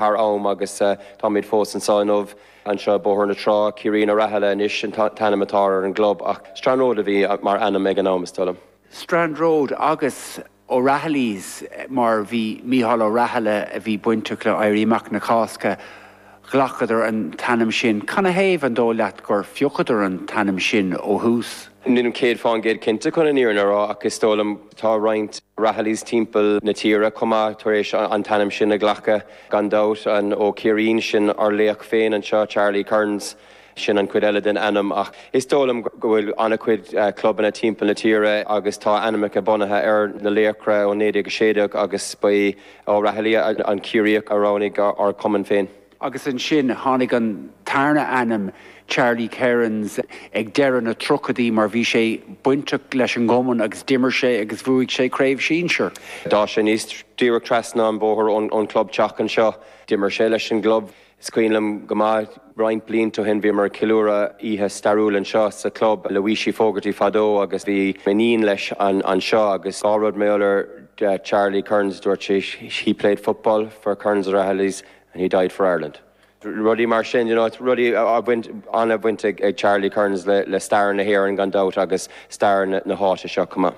thar am agus táimid fós anso inniu. Anseo, Bóthar na Trá, Ciarín Ó Rathaille anois an t-ainm atá ar an gclub ach Strand Road a bhí mar ainm ag an am, is dóigh liom. Strand Road agus O'Rahilly's mar bhí Micheál Ó Rathaille a bhí bainteach le hÉirí Amach na Cásca, ghlacadar an t-ainm sin. Canathaobh an dóigh leat gur phiocadar an t-ainm sin ó thús? Nílim 100% cinnte chun an fhírinne a rá ach is dóigh liom. Tá roinnt Rahillys timpeall na tíre chomh maith tar éis an t-ainm sin a ghlacadh, gan dabht. An Ó Ciarín, sin ár laoch féin anseo, Charlie Kerins, sin an chuid eile den ainm. Ach is dóigh liom go bhfuil an-chuid clubanna timpeall na tíre agus tá ainmneacha bunaithe ar na laochra ó 1916 agus ba é O'Rahilly an Ciarraíoch a roghnaigh ár gcumann féin. agus ansin tháinig an tarna ainm, Charlie Kerins, ag deireadh na tríochaidí mar bhí sé bainteach leis an gcumann agus d'imir sé agus bhuaigh sé craobh sinsir. D'fhás sé aníos díreach trasna an bhóthair ón chlubtheach anseo. D'imir sé leis an gclub, is cuimhin liom go maith, roinnt blianta ó shin bhíomar ag ceiliúradh oíche stairiúil anseo sa chlub, le Mossie Fogarty fadó agus bhí m'iníon leis anseo agus dhá rud ar eolas ar Charlie Kerins, dúirt sí, he played football for Kerins O'Rahillys. and he died for Ireland. Rudaí mar sin, you know, rudaí a bhain, an-bhaint ag Charlie Kerins le stair na hÉireann gan dabht agus stair na háite seo chomh maith.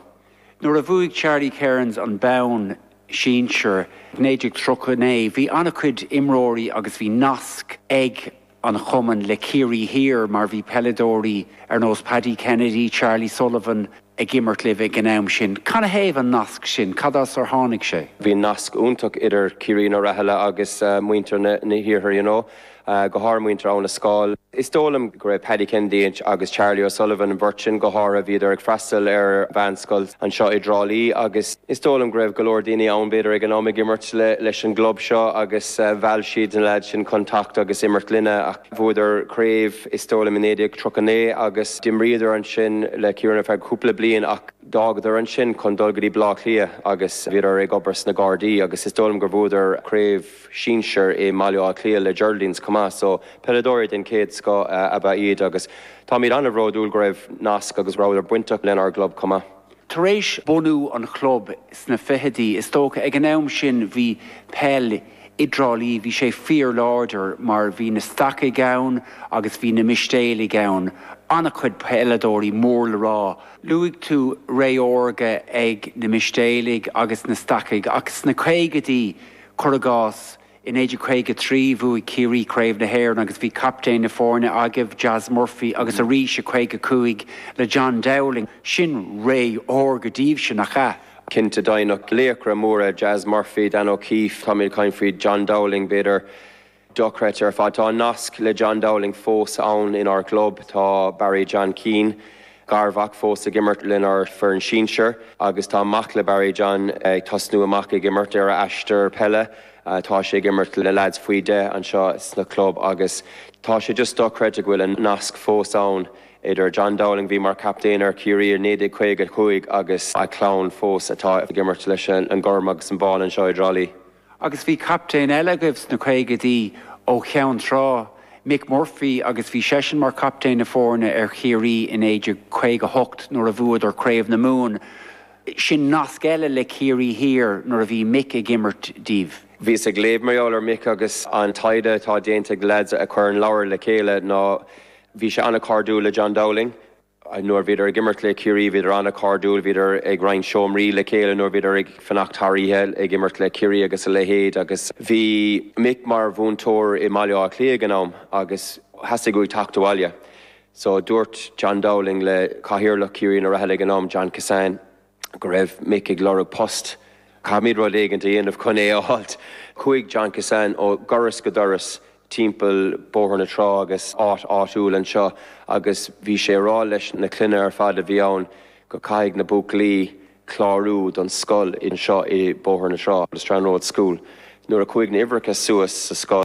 Nuair a bhuaigh Charlie Kerins an bonn sinsir i 1939, bhí an-chuid imreoirí agus bhí nasc ag. an gcumann le Ciarraí Thiar mar bhí peileadóirí ar nós Paddy Kennedy, Charlie Sullivan ag imirt libh ag an am sin. Canathaobh an nasc sin? Cad as ar tháinig sé? Bhí nasc iontach idir Ciarín Ó Rathaille agus muintir an Iarthair you know, go háirithe muintir Abhainn an Scáil. Is dóigh liom go raibh Paddy Kennedy agus Charlie O'Sullivan, an bheirt sin go háirithe, bhíodar ag freastal ar mheánscoil anseo i dTrá Lí agus, Is dóigh liom go raibh go leor daoine ann, b'fhéidir, ag an am ag imirt leis an gclub seo agus mheall siad na leaids sin chun teacht agus imirt linne. Ach bhuadar craobh, is dóigh liom, i 1939 agus d'imríodar ansin le Ciarraí ar feadh cúpla bliain ach d'fhágadar ansin chun dul go dtí Baile Átha Cliath agus bhíodar ag obair sna Gardaí agus is dóigh liom gur bhuadar craobh sinsir i mBaile Átha Cliath le Geraldines chomh maith so peileadóirí den chéad scoth ab ea iad agus táimid an-bhródúil go raibh nasc agus go rabhadar bainteach lenár gclub chomh maith. Tar éis bhunú an chlub sna fichidí, is dócha, ag an am sin bhí peil i dTrá Lí, bhí sé fíorláidir mar bhí na Stacaigh ann agus bhí na Mistéalaigh ann, an-chuid peileadóirí mór le rá. Luaigh tú ré órga ag na Mistéalaigh agus na Stacaigh ach sna caogaidí, cuir i gcás, I 1953 bhuaigh Ciarraí Craobh na hÉireann agus bhí captaen na foirne agaibh, Jas Murphy, agus arís i 55 le John Dowling. Sin ré órga daoibhse, nach ea? Cinnte, deimhneach. Laochra móra, Jas Murphy, Dan O'Keeffe, táimid ag caint faoi John Dowling b'fhéidir. Dochreidte ar fad. Tá an nasc le John Dowling fós ann inár gclub. Tá Barry John Keane garmhac fós ag imirt lenár bhfoireann sinsear agus tá mac le Barry, John, ag tosnú amach ag imirt ar a aistear peile. Tá sé ag imirt le leaids faoi 10 anseo sa chlub agus tá sé just dochreidte go bhfuil an nasc fós ann idir John Dowling a bhí mar captaen ar Chiarraí i 1955 agus a chlann fós atá ag imirt leis an gorm agus an bán anseo i dTrá Lí. Agus bhí captaen eile agaibh sna caogaidí ó Cheann Trá, Mick Murphy, agus bhí seisean mar chaptaen na foirne ar Chiarraí i 1958 nuair a bhuadar Craobh na Mumhan. Sin nasc eile le Ciarraí Thiar nuair a bhí Mick ag imirt díbh. Bhíos ag léamh mar gheall ar Mick agus an taighde atá déanta ag leaids a chuir an leabhar le chéile ná bhí sé an-chairdiúil le John Dowling. Nuair bhíodar ag imirt le Ciarraí bhíodar an-chairdiúil, bhíodar ag roinnt seomraí le chéile nuair bhíodar ag fanacht thar oíche ag imirt le Ciarraí agus a leithéid agus bhí Mick mar mhúinteoir i mBaile Átha Cliath ag an am agus theastaigh uaidh teacht abhaile. So dúirt John Dowling le cathaoirleach Ciarnaigh Uí Rathaille ag an am, John Kissane, go raibh Mick ag lorg post, caithfimid rud éigin a dhéanamh chun é a fháilt. Chuaigh John Kissane ó dhoras go doras timpeall Bóthar na Trá agus áit áitiúil anseo agus bhí sé á rá leis na clainne ar fad a bhí ann go caithfidh na buachaillí clárú don scoil anseo i Bóthar na Trá, The Strand Road School. Nuair a chuaigh na huimhreacha suas sa scoil.